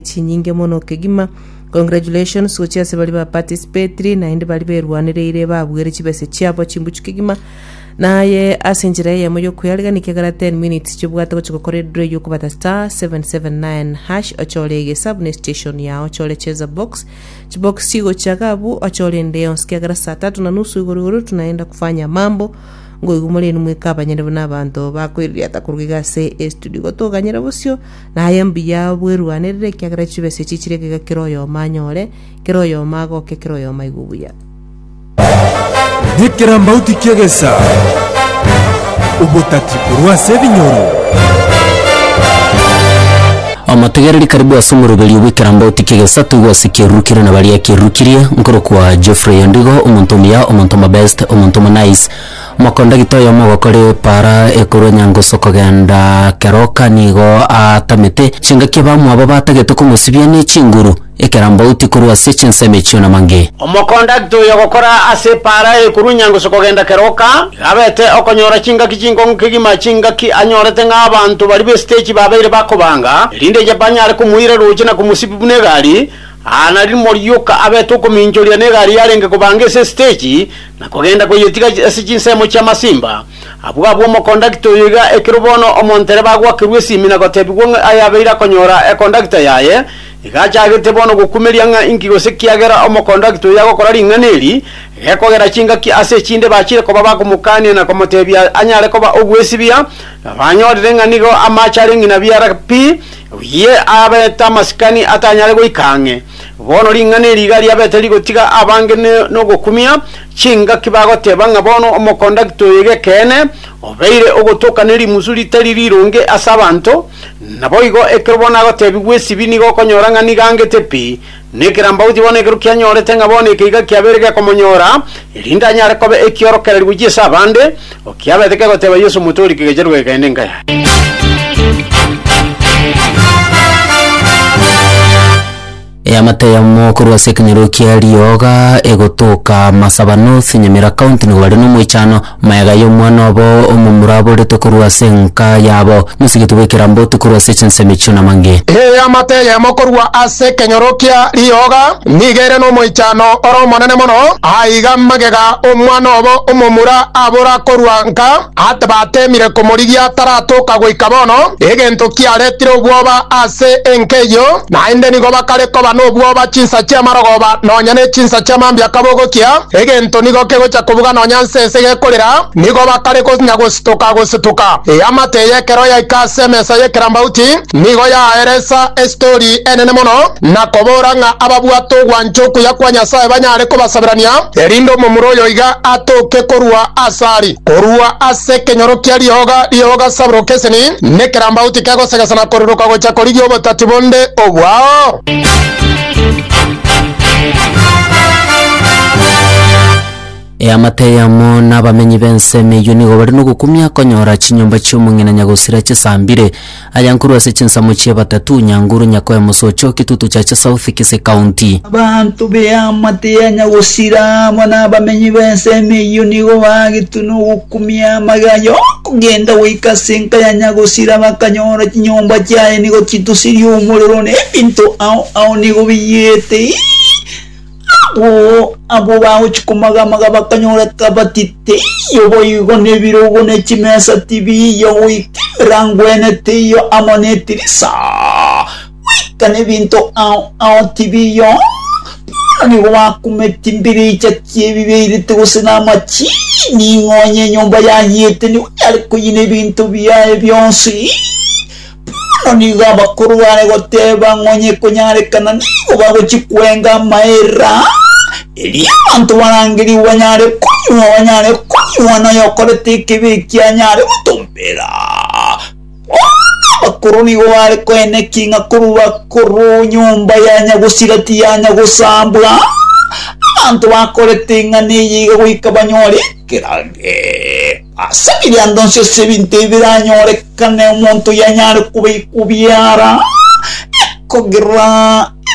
chinyinge mono kegima. Congratulations gochia ase bari ba participatory naende bari berwanereire babuere chibese chiabo chimbuchu kegima naye ase enchera eyemo yokweyariganiki egara 10 minutes chobwate gochia gokora edraw yokobata star 779 hash ochore egesabu ne station yao ochore cheza box chibox chigochia iga abwo ochore ende yonsi kiagera saa tatu na nusu igoro igoro tunaenda kufanya mambo ngoigumore inwe mweka abanyene buna abanto bakoiriata koruga iga ase estudio igo toganyere bosio Naye mbuya bw'erwanerere, ekiagera chibesa echi chire geega kera oyomo anyore, kera oyomo agoke, kera oyomo aigwe buya. Nekerambauti ki'egesa, obotati korwa ase ebinyoro. Omotegereri karibu ase omoroberio bw'ekerambauti ki'egesa toigwe ase ekiarurukire na baria ekiarurukiriie, nkorokwa Geoffrey Ondigo, omonto omuya, omonto omobest, omonto omonais, Omokondagita oyomo ogokora epaara ekuru enyangusu kogenda keroka nigo aatamete chingaki abamwabo batagete komosibia ne chinguru, ekerambauti korwa ase chinsemo echio na mange. Omokondagita oyo ogokora ase epaara ekuru enyangusu kogenda keroka nigo abete okonyora chingaki chinkong'u kegima, chingaki anyorete ng'a abanto baria b'esiteji babeire bakobanga, erinde ye banyare komoira roche na komosibia buna egari. Aa nari morioka abete okominchoria na egari yarenge kobanga ase esiteji, Na kogenda koyetiga ase chinsemo chi'amasimba, abwo abwo omokondakita oyo iga ekero bono omontereba agwakerwe esimi na gotebigwa ng'a aye abeire akonyora ekondakita yaye, iga achagete bono gokumeria ng'a inki gose ekiagera omokondakita oyo agokora ring'ana eri, gekogera chingaki ase echinde bachire koba bakomokania na komotebia anyare koba ogwesibia, na banyorire ng'a nigo amache are ng'ina biara pi, oye abete amasikani atanyare goika ang'e. Bono ring'ana eri iga riabete rigotiga abange nogokumia chingaki bagoteba ng'a bono omokondakta oyo g'ekeene obeire ogotoka ne rimusu ritari rironge ase abanto. Naboigo ekero bono agotebigwa esibi nigo okonyora ng'a nigo angete pi nekerambauti bono ekero kianyorete ng'a bono eke iga kiabeire gekomonyora erinde anyare koba ekiorokererio gochia ase abande Okiabete kegoteba Yeso omote o rikega riaye rw'egeene enka yaye. Eamate eyemo korwa ase ekenyoro kia rioga egotoka Masaba North, Nyamira County nigo bare nomoichano mayega y'omwana obo omomura aborete korwa ase enka yabo mosigiti bw'ekeramboti korwa ase chinsemo echio namange. Eamate eyemo korwa ase ekenyoro kia rioga. Nigo ere nomoichano ore omonene mono. Aiga magega omwana obo omomura abora korwa nka ati batemire komorigia taratoka goika bono, egento kiaretire obwoba ase enka eyio, naende nigo bakare koba nobwoba chinsa chi'amarogoba nonya ne chinsa chi'amambia kabogokia, egento nigo kegocha kobuga nonya nse ense gekorera, nigo bakare konya gositoka gositoka. Eamate ey'ekero yaika ase emesa y'ekerambauti. Nigo yaeresa esitori enene mono, na kobora ng'a ababwate ogwancha okuya kwa Nyasae banyare kobasaberania, erinde omomura oyo iga atoke korua as'ari, korua ase ekenyoro kia rioga rioga sabrokeseni, nekerambauti kegosegesa na koriroka gocha korigia obotati bonde obwao. Eamate eyemo na abamenyi b'ensemo eyio nigo bare nogokumia konyora chinyomba chi'omong'ina Nyagosira chisambire. Aya nkorwa ase chinsemo chie Batatu, Nyanguru, Nyakoe, Mosocho, Kitutu, Chacha South, Kisii County. Abanto b'eamate ya Nyagosira amo na abamenyi b'ensemo eyio nigo bagetwe nogokumia amagena y'okogenda goika ase enka ya Nyagosira bakanyora chinyomba chiaye nigo chitusirie omorero na ebinto ao ao nigo biyete. Abwo abwo bagochia komagamaga bakanyoreka bati teiyo boigo nebirogo ne chimesa tibiiyo goika emerango ene teiyo amo netirisa goika nebinto ao ao tibiiyo bono nigo bakumeti mbiricha ki'ebibe eirite gose namachini ng'onye enyomba yayiete nigo yare koyina ebinto biaye bionsi Bono nigo abakoro bare goteeba ng'a onye ekonyarekana nigo bagochia kwenga amaera, erio abanto barangerigwe banyare konywa, banyare konywa, na oyokorete ekebi ekio anyare gotombera. Bono abakoro nigo bare koenekia ng'a korwa bakoro nyomba yanya gosira tiyanya gosambwa, abanto bakorete ing'ana eye iga goika banyore ekerango. Ase ebiando inse ase ebinto ebi biranyorekane omonto oyanyare kobaikwa obiara, ekogera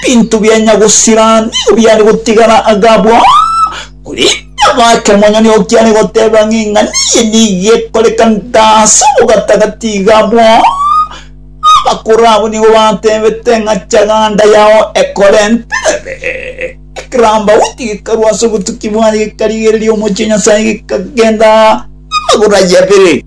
ebinto bianya gosira nigo biare gotigara agabwo. Korende abaake omonyene oo kiare goteba ng'a eng'ana eye nigo ekorekanta ase obogatagati igabwo, abakoro abwo nigo batebete ng'a chaganda yao ekorenterere. Ekerambaoti gekarwa ase obotuki bwaye, gekarigereria omochie o Nyasae, gekagenda amagoro aye abere.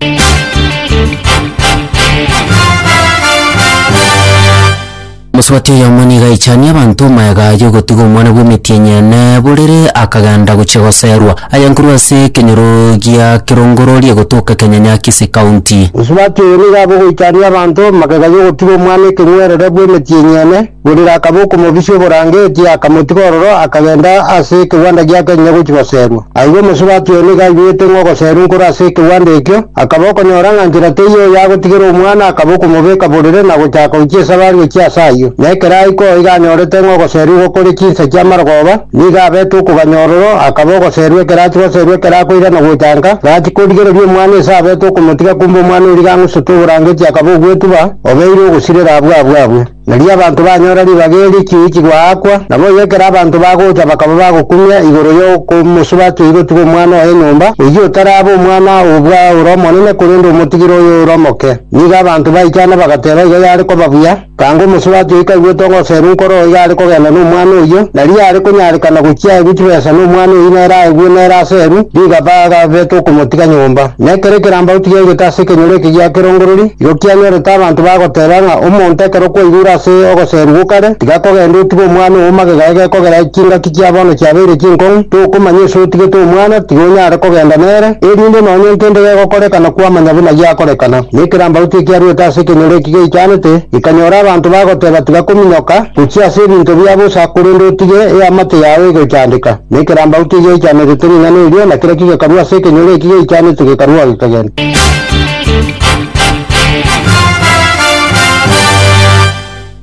Omosuati oyomo nigo aichanie abanto omoeega y'ogotiga omwana bw'emetienyi ene borere akagenda gochia goseerwa. Aya nkorwa ase ekenyoro gia Kirongorori egotoka Kenyanyakisi County. Omosuati oyo nigo akogoichania abanto magega y'ogotiga omwana ekeng'werere bw'emetienyi ene. Burira akaba okomobisia oborangetie, akamotiga ororo, akagenda ase ekegwanda giake onye gochia goserwa. Agwo omosubati oye nigo aigwete ng'a ogoserwa nkoro ase ekegwanda ekio, akaba okonyora ng'a nchera teiyo oyo agotigera omwana, akaba okomobeka borere na gochaka gochia esabari gochia ase ayio. Na ekero aika oo iga anyorete ng'a ogoserwa igo kore chinsa chia marogoba, nigo abete okoganya ororo, akaba ogoserwa ekero achia goserwa ekero akoirana gochanka, gachia korigereria omwana ise abete okomotiga kumbe omwana oria iga ang'usete oborangetie akaba ogwetuba, obeire ogosirera abwo abwo abwo. Erio abanto banyora ribaga eri chiichi goakwa, naboigo ekero abanto bagocha bakaba bagokumia igoro y'okomosuba ase igotiga omwana oye nyomba, oyio otarabe omwana oo bwa ore omonene, korende omotigire oyo ore omoke. Nigo abanto baichana bagateba igo yare koba buya, tanga omosuba ase oyio kaigwete ogoseru nkoro oo iga are kogenda nomwana oyio, na riria are konyarekana gochia aegwe chibesa nomwana oyio nere aegwe nere aseru, rigaba agabete okomotiga nyomba. Nekero ekerambauti giaigete ase ekenyoro eke gia kerongorori, igo kianyorete abanto bagoteeba ng'a omonto ekero okwaigure ase ogoseerigwa okare, tiga kogenda otige omwana oo magega egekogera ere chingaki chia bono chiabeire chinkong'u, tokomanya ase otigete omwana, tiga onyare kogenda nere, erinde nonya nkende gegokorekana kwamanya buna giakorekana. Na ekerambauti ekiaruete ase ekenyoro eki geichanete, gekanyora abanto bagoteeba tiga kominyoka, gochia ase ebinto bia bosa, korende otige eamate yao egochandeka. Nekerambau tigeichanerete ring'ana erio, na kera kigekarwa ase ekenyoro eki geichanete gekarwa ogekegento.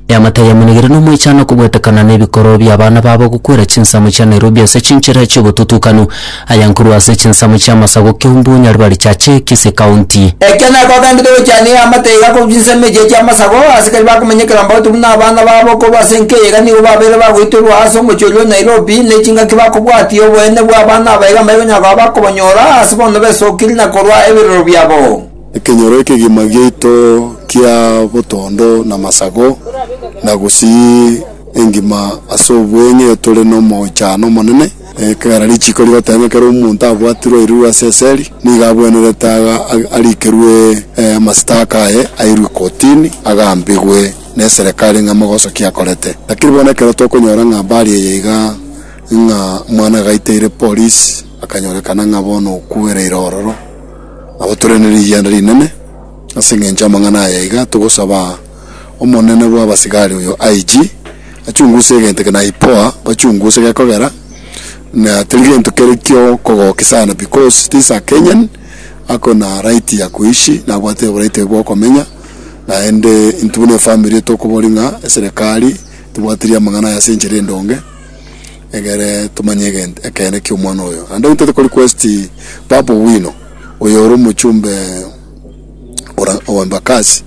Eamate yamonigire nomoichano kobwetekana nebikoroo biabana babo gokwera chinsemo chia Nairobi ase chinchera chiobotutukanu aya nkorwa ase chinsemo chia masagu kiombu Nyaribari Chache, Kisii County. Ekia nako agenderete gochana eamate iga korwa chinsemo echiria chia masagu, abasikari bakomenyekerambao tobuna abana babo korwa ase enka eyaiga nigo babeire bagoitorwa aase omochie oria o Nairobi. Enobi ne chingaki bakobwatia oboene bw'abana aba iga mbaikonyara koba bakobonyora ase bono besokiri na korua ebirero biabo. Ekenyoro ekegima giaito kia botondo na masago, na gusii engima ase obweng'e tore nomochano omonene, ekera richiko rigoteba ng'a kera omonto abwatirwe airurwe ase eseri nigo abwenerete aga arikerwe amasitaka aye, airwe kotini, agambigwe. neserekari ng'a mogosokia akorete. Lakiri bono ekero tokonyora ng'a mbari eye iga ng'a mwana agaiteire polisi akanyorekana ng'a bono okuereire ororo nabo tore nerigianda rinene. Ase engencho y'amang'ana aya iga togosaba omonene bw'abasigari oyo IG achunguse egento eke na IPOA bachunguse gekogera na teri gento kere kio kogokia sana because this a Kenyan ako na right ya kuishi nabwate oboraiti oye bwokomenya. Naende intwe buna efamiri tokoboria ng'a eserekari tebwatirie amang'ana aya ase enchera endonge, egere tomanye egento ekeene ki'omwana oyo. Naende intwe toko request Babu Owino, oyo ore omochumbe ora o Embakasi,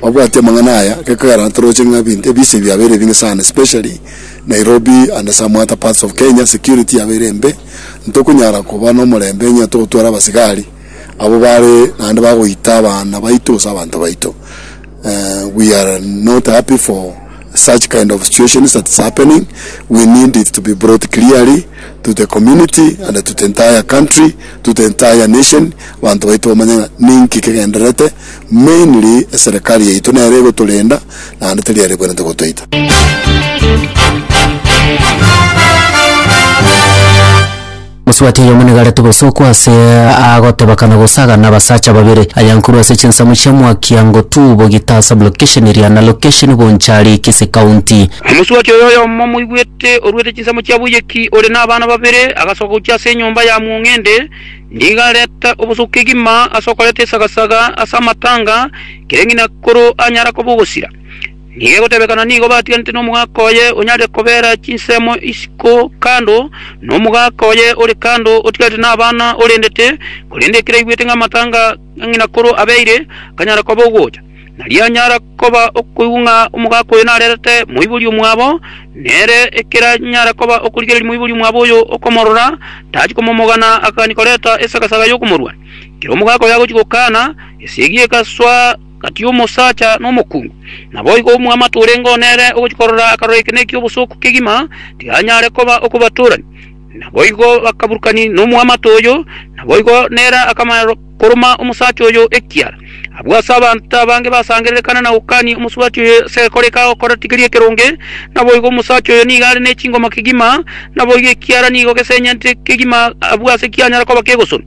babwati amang'ana aya, gekogera naende toroche ng'a ebinto ebise biabeire ebinge sana especially Nairobi and some other parts of Kenya, security yabeire embe, ntokonyara koba nomorembe onye togotwara abasigari. Abwo bare naende bagoita abana baito gose abanto baito. We are not happy for such kind of situations that is happening. We need it to be brought clearly to the community and to the entire country, to the entire nation. Abanto baito bamanye ng'a ninki kegendererete, mainly eserekari yaito nere egotorenda naende teri ere ekwenerete gotoita. Mosubati oyomo nigo arete gosokwa ase agoteba kana gosagana abasacha babere aya nkorwa ase chinsamu chia mwakia ngotu bogita ase blocation eria na location Bonchari Kisii County. Omosubati oyo oyomo moigwete oruete chinsamu chia boiyeki ore na abana babere agasoka gochia ase enyomba ya Mwong'ende nigo arete obosoku kegima ase okoreta esagasaga ase amatanga kereng'ina koro anyara koba ogosira Nigo egotebekana nigo batiganete nomogaka oye onyare kobera chinsemo isiko kando, na omogaka oye ore kando otigarete nabana orendete, korende ekero aigwete ng'a amatanga a ng'ina korwa abeire, akanyara koba ogocha. Nario anyara koba okoigwa ng'a omogaka oyo narerete moibori omwabo, nere ekero anyara koba okorigereria moibori omwabo oyo okomorora, tachia komomogana agakania koreta esagasaga y'okomorwania. Ekero omogaka oyo agochia gokana, esegi egasoa, Gati omosacha na omokungu, naboigo omwamato orenge oo nere ogochia korora akaroro eke nekia obosooku kegima, tikanyare koba okobatorania. Naboigo bakaburukania nomwamato oyo, naboigo nere akamanya koroma omosacha oyo ekiara. Abwo ase abanto abange basangererekana na gokania omosubati oyo ase egekore eke agokora tikeri ekeronge, naboigo omosacha oyo nigo are nechingoma kegima, naboigo ekiara nigo gesenyenete kegima abwo ase kianyara koba kegosonwa.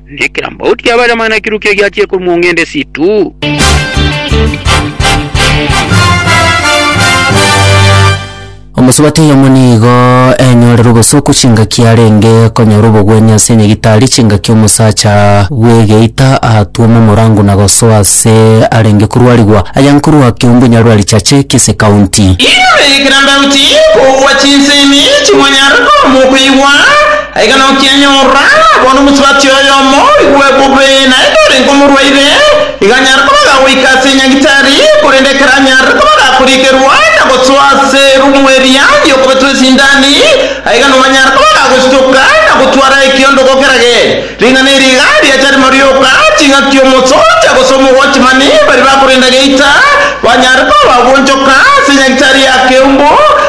Nekerambauti y'abarema nekirue kegiachire korwa mong'ende esitu. Omosubati oyomo nigo enyorere obosuku chingaki arenge konyora obogwenia ase enyagitari chingaki omosacha bw'egeita aatuoma omorango na gosoa ase arenge korwarigwa aya nkorwa keumbu Nyarwari Chache Kisii County. Inwe ekerambauti y'okogwa chinsemi chimonyare komokoigwa, Aiga nokianyorora, bono omosubati oyomo oigwe bobe, naende orenge omorwaire, iga anyare koba agagoika ase enyagitari, korende ekero anyarire koba agakorigerwa na gosoa ase erumu eria ri'okobetwa esindani, aiga nomanyare koba agagositoka na gotwara ekiondogo kerage. Ring'ana eri iga riacha rimo rioka, ching'aki omosoja gose omowatchmani baria bakorenda geita, banyare koba bagwonchoka ase enyagitari ya keumbu,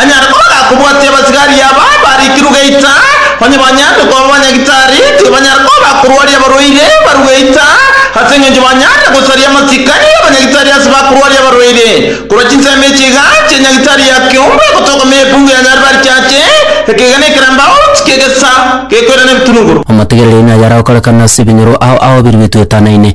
Anyare koba gakobwatia abasigari aba barikirwe geita, onye banyaarire koba banyagitari, tibanyare koba bakorwaria abarwaire barwe geita, ase engencho banyaarire gosaria amasikani abanyagitari ase bakorwaria abarwaire. Korwa chinsemo echi iga chi'enyagitari ya keombe egotoka me ekungu ya Nyaribari chiache, ekeegena ekeramba out ki'egesa gekoirana ebitunuguru. Omotigereri nayare gokorekana ase ebinyoro ao ao biri bitwetanaine,